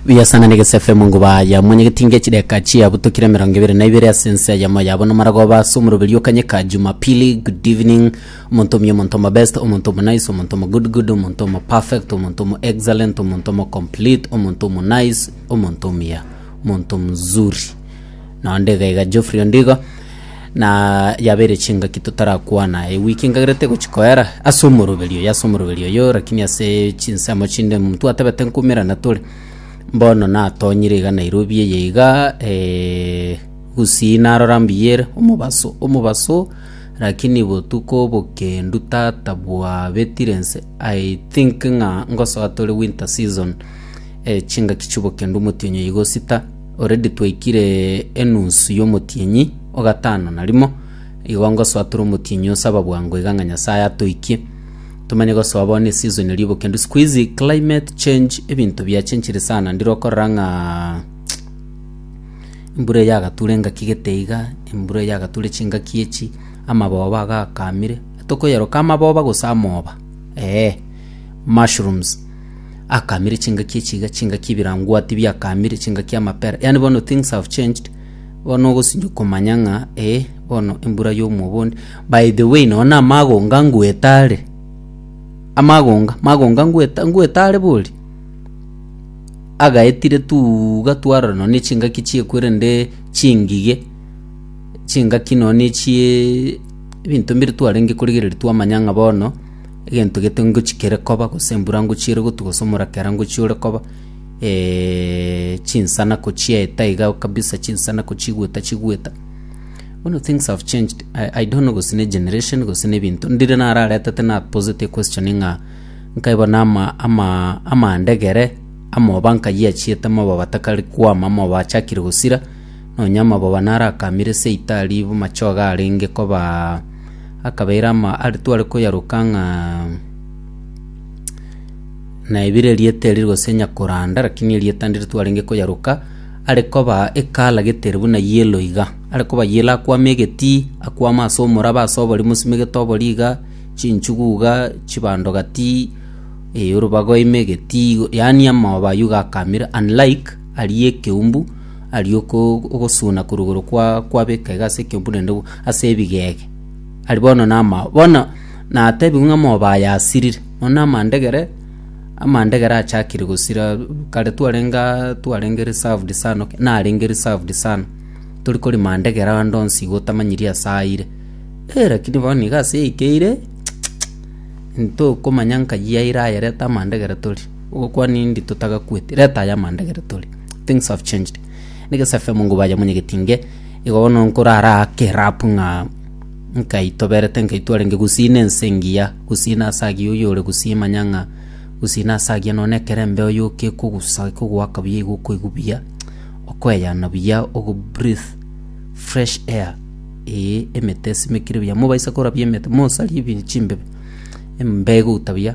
Buya sana na egese FM nguba ya mwanyegeti nge chideka chia butokire emerongo ebere na ibere ase ense ya moyo yabo nomaragoba ase omoroberi okanyeka jumapili good evening omonto omya omonto omo best omonto omo nice omonto omo good good omonto omo perfect omonto omo excellent omonto omo complete omonto omo nice omonto omuya omonto mzuri Naende iga iga Geoffrey Ondigo na yabeire chingaki totarakwana. Ewiki nkagerete gochi koera ase omoroberi oyo ase omoroberi oyo lakini ase chinsemo chinde omonto atebete nkumerana tore. Mbono natonyire iga Nairobi eye iga eh, gusii narora mbuya ere omobaso omobaso lakini botuko bokendu tata bwabetire ense I think ng'a ngosoa tore winter season eh, chingaki chi'obokendu omotienyi oyo igosita. Already twaikire enusu y'omotienyi o gatano na rimo, igo ngosoa tore omotienyi osaba bwango iga ng'a Nyasaye atoikie. Tomanye gosoa bono eseason erio iboke ndu sikuizi climate change ebinto biachenchire sana ndire okorora ng'a embura eye yagatura engaki gete iga, embura eye yagatura chingaki echi, amaboba aga akamire. Tokoyeroka amaboba gose amoba, eeh mushrooms. Akaamire chingaki echi iga, chingaki ebirangwati biakaamire, chingaki amapera. Yaani bono things have changed. Bono ogosinyo komanya ng'a eh, bono embura y'omwobondi. By the way, nonya na amagonga ngwete are. Amagonga, magonga ngwete, ngwete are bori. Agaetire tuuga twarora nonya na echingaki chiekwerende chingige, chingaki nonya na echie ebinto mbire twarenge korigereria twamanya ng'a bono Egento gete ngochia kere koba, gose embura ngochia ere gotwa, gose omorakera ngochia ore koba, eh, chinsana kochieta iga kabisa, chinsana kochigwa otachigweta. Bono things have changed, I, I don't know gose ne generation gose ne ebinto. Ndire nararetete naposeti equestion ng'a, nkae bono ama ama amaanda egere, amoba nkayia achiete, amoba batakari kwama, amoba achakire gosira, Nonya amagoba narakamire ase Italy bo machoga arenge kobaa akabeire ama are tware koyaroka ng'a na ebire erieta erio gose nyakoranda lakini erieta ndire twarenge koyaroka are koba ekala getere buna yellow iga. Are koba yellow akwame egetii akwame ase omoraba ase obori mosimegete obori iga chinchugu iga chibando gatii eh orobago ime egetii igo yaani amagoba ayio iga akamire unlike Aria ekeumbu, aria oko- ogosuna korwa igoro kwa- kwabeka iga ase ekeumbu naende bo- ase ebigege, aria bono namao. Bono natebigwe ng'a amoba aya asirire, mono na amandegere, amandegere achakire gosira, kare twarenge aa twarenge reserved sana ok, narenge reserved sana, tori kori mandegere ande onsi iga otamanyiri ase ayire, eh lakini bono iga ase eikeire, ntokomanya nkai yaira ayerete amandegere tori. Ogokwa nindi totagakweti reta aya amanda egere tore things have changed nige safe mungu baja monyegeti nge igo bono nkorara ake rap ng'a nkaitoberete nkaitwarenge gusina ense engiya gusina ase agiya oyo ore gusii manya ng'a gusina ase agiya nonye na ekerembe oyo kekogusa ekogoaka buya igo okoigwa buya okoeyana buya ogo breathe fresh air ee emete esimekire buya mobaisa korabia emete mosaria ebi chimbebe embe egouta buya.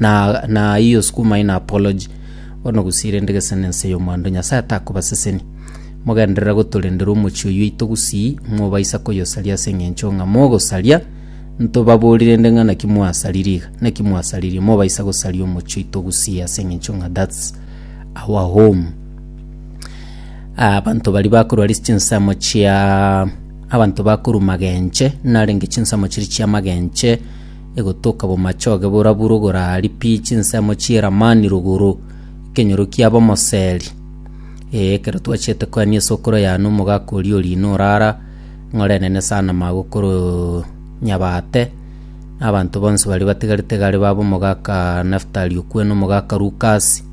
Na, na hiyo sukumai na apology. Bono gose irende gese na ense y'omwando Nyasae takobasesenia. Mogenderera gotorendera omochie oyio oito gusii, mobaisa koyosaria ase eng'encho ng'a mogosaria, ntobabori rende ng'a naki mwasaririe iga, naki mwasaririe, mobaisa gosaria omochie oito gusii ase eng'encho ng'a that's our home. Ah, abanto baria bakorwa ris- chinsemo chia abanto bakorwa magenche, narenge chinsemo chiria chia magenche, egotoka bomachoge boraburo gorari pi chinsemo chi'Elamani rogoro, ekenyoro ki'abamoseri. Ee, ekero twachete koania esokoro y'Anu, omogaka oria o riina orara, ng'ore enene sana magokoro nyabate, na abanto bonsi baria batigarete gare baba omogaka Naftali okwena omogaka Lukasi,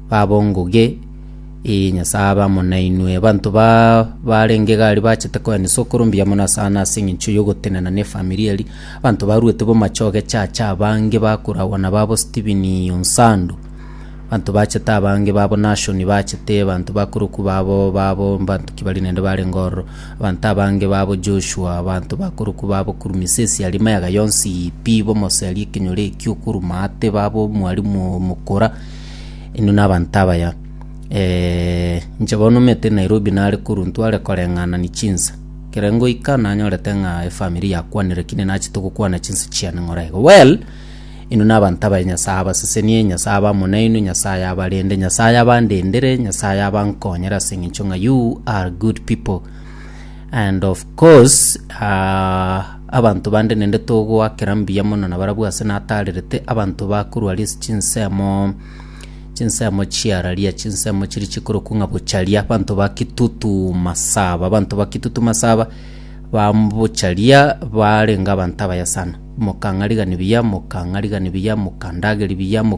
baba ongoge, ee, Nyasae abe amo nainwe. Abanto ba barenge gari bachete koania esokoro mbuya mono asana as'engencho y'ogotenena n'efamiri eria. Abanto baruete bomache ogechacha abange bakoragwa nababo Stephen o Nsandu. Abanto bachete abange babo Nashoni bachete abanto bakorokwa babo babo mbanto ki bari nende barenge ororo. Abanto abange babo Joshua abanto bakorokwa babo kurumia ase esiari mayaga yonsi ii pi bomosearia ekenyoro ekio okoruma ate babo omwarimu oo mokora inwe nabanto abaya. Inche bono omete Nairobi nare korwa ntware koreng'anani chinsa. Kere ngoika nanyorete ng'a efamiri yakwanire ki ninachete gokwana chinse chiane ng'ora igo. Well, inwe nabanto abaye Nyasae abasesenie, Nyasae aba amo nainwe, Nyasae abarende, Nyasae abandendere, Nyasae abankonyere ase eng'encho ng'a you are good people. And of course, ah, abanto bande nende togoakera mbuya mono nabarabwo ase natarerete, abanto bakorwa ris- chinsemo, Chinsemo chiararia, chinsemo chiria chikorokwa ng'a bocharia, abanto ba Kitutu Masaba. Abanto ba Kitutu Masaba babocharia barenge abanto abaye sana. Mokang'arigani buya, mokang'arigani buya, mokandageria buya,